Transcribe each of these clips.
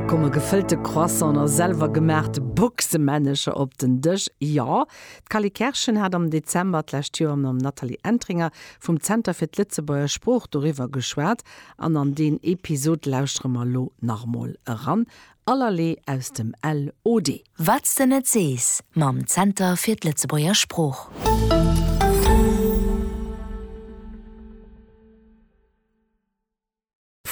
Da komme gefëllte Croissant a selwer gemaachte Boxemännecher op den Dësch. Jo, d'Cally Kerschen hat am Dezember d'lescht Joer mam Nathalie Entringer vum Zenter fir d'Lëtzebuerger Sprooch doriwwer geschwat an an deen Episod lauschtere mer elo nach emol eran. Allerlee aus dem LOD. Wat s de net sees mam Zenter fir d'Lëtzebuerger Sprooch.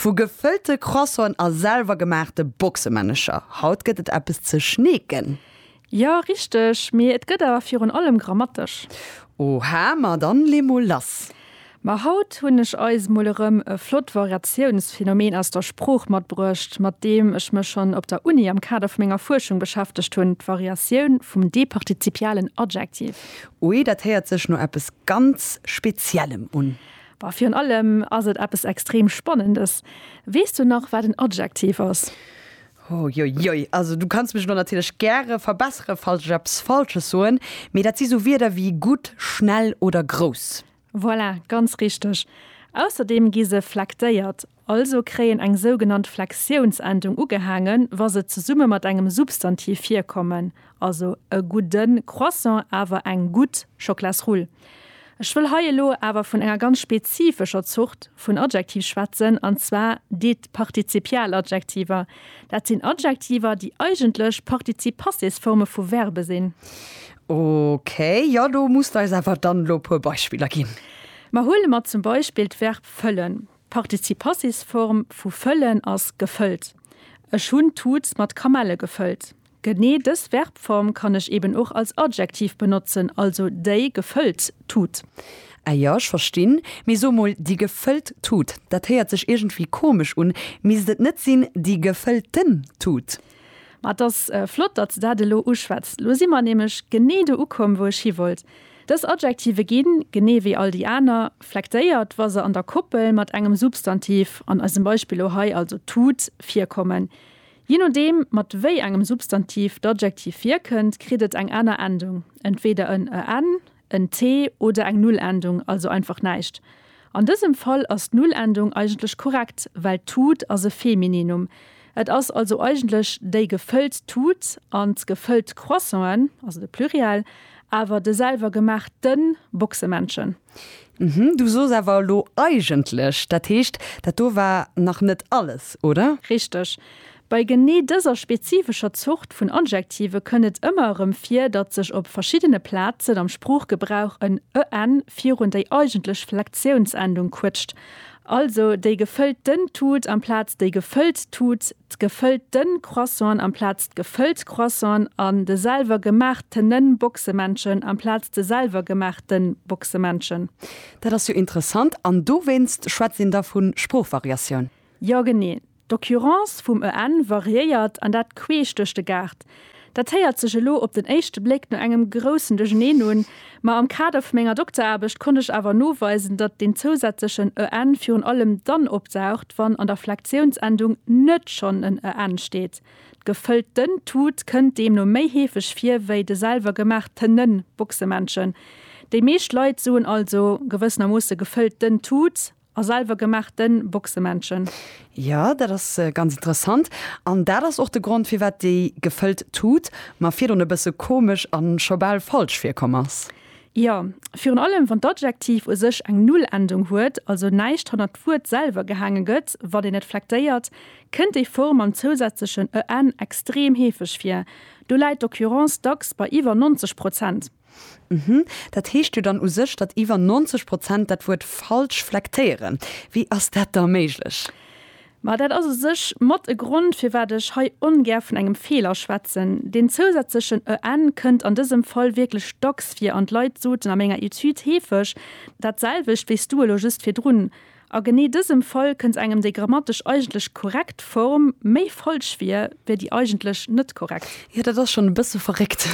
Vu gefëllte Croissanten a selwer gemaachte Boxemännercher, haut gëtt et eppes ze schneeken. Jo, richteg, mee et gëtt awer virun allem grammatesch. Oha, ma dann lee mol lass. Ma haut hunn ech eis mol erëm e flott Variatiounsphenomen aus der Sprooch matbruecht, mat deem ech mech schonn op der Uni am Kader vu menger Fuerschung beschäftegt hunn, d'Variatioun vum departizipialen Adjektiv. Ui, dat héiert sech no eppes ganz Speziellem un. Bah, virun allem ass et eppes extrem Spannendes. Weess du nach, wat en Adjektiv ass? Huiuiui, also du kanns mech elo natierlech gäre verbessere, falls ech eppes Falsches soen, mee dat si sou Wierder wéi gutt, schnell oder grouss. Voilà, ganz richteg. Ausserdeem gi se flektéiert, Also kréien eng sougenannt Flexiounsendung ugehaangen, wa se zesumme mat engem Substantiv virkommen, also e gudde Croissant awer eng gutt Schoklasrull. Ech wëll hei elo awer vun enger ganz spezifescher Zort vun Adjektiv schwätzen, an zwar déi d'Partizipialadjektiver. Dat sinn Adjektiver, déi eigentlech Partizip-Passés-Forme vu Verbe sinn. Ok, jo, do muss de eis awer dann elo e puer Beispiller ginn. Ma huele mer zum Beispill d'Verb fëllen. D'Participassisform vu fëllen ass gefëllt. Ech hunn d'Tut mat Kamelle gefëllt. Genee dës Verbform kann ech eben och als Adjektiv benotzen, also déi gefëllt Tut. Ah jo, ech verstinn. Mee so mol, déi gefëllt Tut, dat héiert sech iergendwéi komesch un. Misst et net sinn, déi gefëllten Tut? Ma et ass flott, datt s de dat elo uschwätz. Lo si mer nämlech genee do ukomm, wou ech hiwollt. Dës Adjektive ginn, genee wéi all déi aner, flektéiert, wa se an der Koppel mat engem Substantiv, an eisem Beispill elo hei also tut, virkommen. Je nodeem, mat wéi engem Substantiv d'Adjektiv virkënnt, kritt et eng aner Endung, entweeder en en, en t oder eng Nullendung, also einfach näischt. An dësem Fall ass d'Nullendung eigentlech korrekt, well d'Tut ass e Femininum. Et ass also eigentlech déi gefëllt Tut an d'gefëllt Croissanten, also de Pluriel, awer de selwer gemaacht te Boxemännchen. Hm, du soos awer elo eigentlech. Dat heescht, dat do war nach net alles, oder? Richteg. Bei genee dëser spezifescher Zort vun Adjektive kënnt et ëmmer erëm vir, datt sech op verschiddene Plazen am Sproochgebrauch en en virun déi eigentlech Flektiounsendung quëtscht, also déi gefëllt den Tut amplaz déi gefëllt Tut, d'gefëllt den Croissant amplaz d'gefëllt Croissant an de selwer gemaach tene Boxemännchen amplaz de selwer gemaach ten Boxemännchen. Dat ass jo interessant. An dowéinst schwätzt een da vu Sproochvariatioun? Jo, genee. D'Occurrence vum EN variéiert, an dat queesch duerch de Gaart. Dat héiert sech elo op den éischte Bléck no engem groussen Duercherneen un, ma am Kader vu menger Dokteraarbecht konnt ech awer noweisen, datt deen zousätzlechen EN virun allem dann opdaucht, wann an der Flektiounsendung net schonn en EN steet. D'gefëllt ten Tut kënnt deemno méi heefeg vir wéi de selwer gemaach tenen Boxemännchen. Déi meescht Leit soen also gewëssenermoosse gefëllt ten Tut. A selwer gemaachte Boxemännchen. Jo, dat ass ganz interessant. An dat ass och de Grond, firwat déi gefëllt Tut mer virdrun e bësse komesch a scho bal falsch virkomm ass. Jo, virun allem wann d'Adjektiv u sech eng Null-Endung huet, also näischt hannert d'Wuert selwer gehaange gëtt, wann een et flektéiert, kënnt déi Form mam zousätzlechen en extrem heefeg vir. Do läit d'Occurrence dacks bei iwwer 90 Prozent. Uhmm. Dat heescht jo dann u sech, datt iwwer 90 Prozent dat Wuert falsch flektéieren. Wéi ass dat da méiglech? Ma dat ass u sech mat e Grond, firwat ech hei ongär vun engem Feeler schwätzen. Deen zousätzlechen en kënnt an dësem Fall wierklech dacks vir an d'Leit soten a menger Etüd heefeg dat selwecht wéi s du elo just virdrun. A genee dësem Fall kënnt engem déi grammatesch eigentlech korrekt Form méi falsch vir, wéi déi eigentlech net korrekt. Jo, dat ass schonn e bësse verréckt.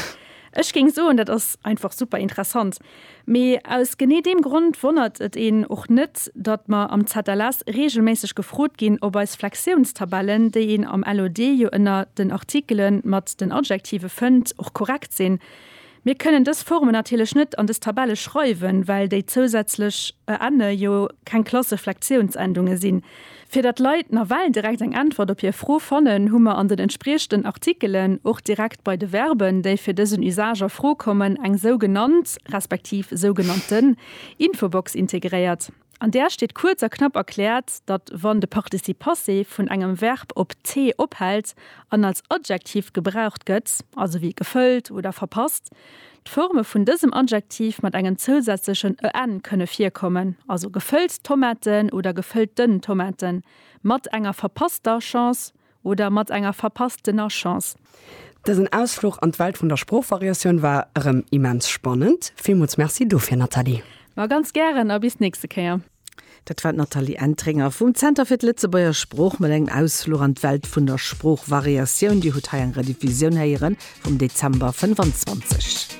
Ech géing soen, dat ass einfach super interessant. Mee aus genee deem Grond wonnert et een och net, datt mer am ZLS reegelméisseg gefrot ginn, ob eis Flexiounstabellen, déi een am LOD jo ënner den Artikele mat den Adjektive fënnt, och korrekt sinn. Mir kënnen dës Formen natierlech net an dës Tabelle schreiwen, well déi zousätzlech ënne jo keng Klasseflektiounsendunge sinn. Fir datt d'Leit nawell direkt eng Äntwert op hir Fro fannen, hu mer an den entspriechenden Artikelen och direkt bei de Verben, déi fir dësen Usage a Fro kommen, eng sougenannt respektiv sougenannten Infobox integréiert. An där steet kuerz a knapp erkläert, datt wann de Participe passé vun engem Verb op t ophält an als Adjektiv gebraucht gëtt, also wéi gefëllt oder verpasst, d'Forme vun dësem Adjektiv mat engem zousätzlechen en kënne virkommen, also gefëllt Tomaten oder gefëllt den Tomaten, mat enger verpasster Chance Oder mat enger verpasstener Chance. Dësen Ausfluch an d'Welt vun der Sproochvariatioun war erëm immens spannend. Villmools Merci dofir, Nathalie! Ma ganz gären a bis d'nächste Kéier! Dat war d'Nathalie Entringer vum Zenter fir d'Lëtzebuerger Sprooch mat engem Ausfluch an d'Welt vun der Sproochvariatioun. Dir hutt hei eng Rediffusioun héiere vum Dezember 25.